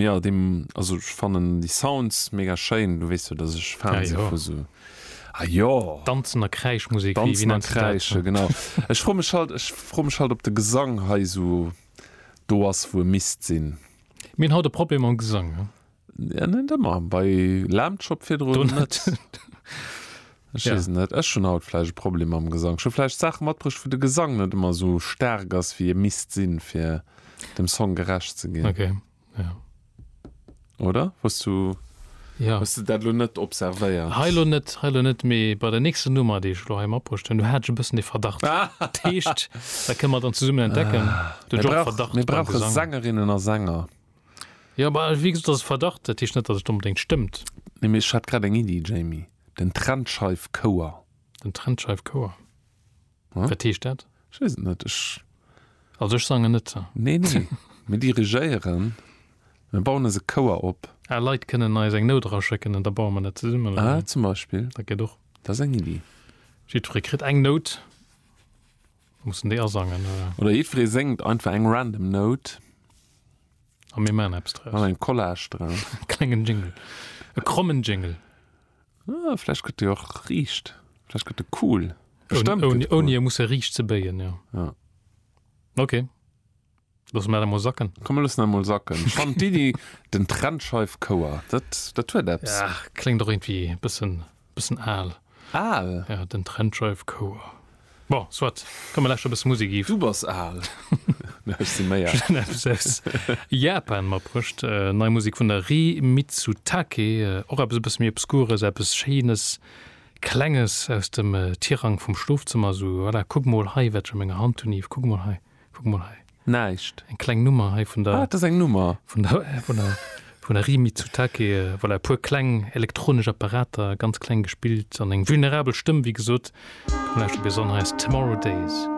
Jo deem also ech fannen déi Sounds mega schéin, du weess jo dat ech Fan si vu sou ah jo. Danzen a Kräischmusek, wéi wéi nenns de dat? Danzen a kräischen genau. Ech froe mech halt ech froe mech halt op de Gesang hei sou do ass wou e misst sinn. Mir hunn haut e Problem mam Gesang, ne? Net ëmmer, bei Lamb Chop virdrun net. Ech weess et net. Ech hunn haut vläicht e Problem mam Gesang. Ech hu vläicht Saache matbruecht, wou de Gesang net ëmmer esou staark ass, wéi e misst sinn, fir dem Song gerecht ze ginn. Okay, jo. Oder? Hues du, hues du dat elo net observéiert? Hei elo net, hei elo net, mee bei der nächster Nummer, déi ech elo hei matbruecht hunn, do hat ech e bëssen de Verdacht. Dat heescht, dat kënne mer dann zesummen entdecken. Mir brauch, mir brauche Sängerinnen a Sänger. Jo, ma wéi gesot, dat ass e Verdacht. Dat heescht net, dass et onbedéngt stëmmt. Nee, mee ech hat grad eng Iddi, Jamie. Den Trennscheifchouer. Den Trennscheifchouer? Hm? Wat heescht dat? Ech weess et net. Ech. Also ech sangen net. Nee, nee. Mir dirigéieren. Mir bauen eis e Chouer op. Ah, Leit kënnen eis eng Nout eraschécken an da baue mer dat zesummen, oder wéi? Ah, zum Beispill. Dat geet och. Dat ass eng Iddi. Jiddweree kritt eng Nout. Muss en déi asangen, oder? Oder jiddweree séngt einfach eng random Nout. A mir maachen eppes draus. Maachen eng Collage draus. E klengen Jingle. E krommen Jingle. Ah, vläicht gëtt dee och riicht. Vläicht gëtt e cool. Bestemmt gëtt e cool. Ouni e musse riicht ze béien, jo. Ja. Ok. Loosse mer dat emol sacken. Komm, mir loossen dat emol sacken. Ech fannen d'Iddi, den Trennscheif-Chouer, dat, dat huet eppes. Ja, kléngt och iergendwéi e bëssen Bëssen aal. Aal? Ja, den Trend Drive Core. Bon, soit, komm mir läschter bëssen Musik iw. Du bass aal. Mä ech si méi aal. Eppes aus Japan matbruecht, nei Musik vun der Rie Mitsutake. Och eppes e bësse méi Obskures, eppes Schéines, Klenges aus dem Tirang vum Schlofzëmmer. Esou, voilà, kuck mol hei, wat ech a menger Hand hunn, Yves, kuck mol hei. Kuck mol hei. Näischt. Eng kleng Nummer hei vun der. Ah, dat ass eng Nummer. Vun der, vun der, vun der Rie Mitsutake. Voilà, e puer kleng elektronesch Apparater, ganz kleng gespillt an eng vulnerabel Stëmm, wéi gesot. Komm, lauschter bis an. Hei ass Tomorrow Days.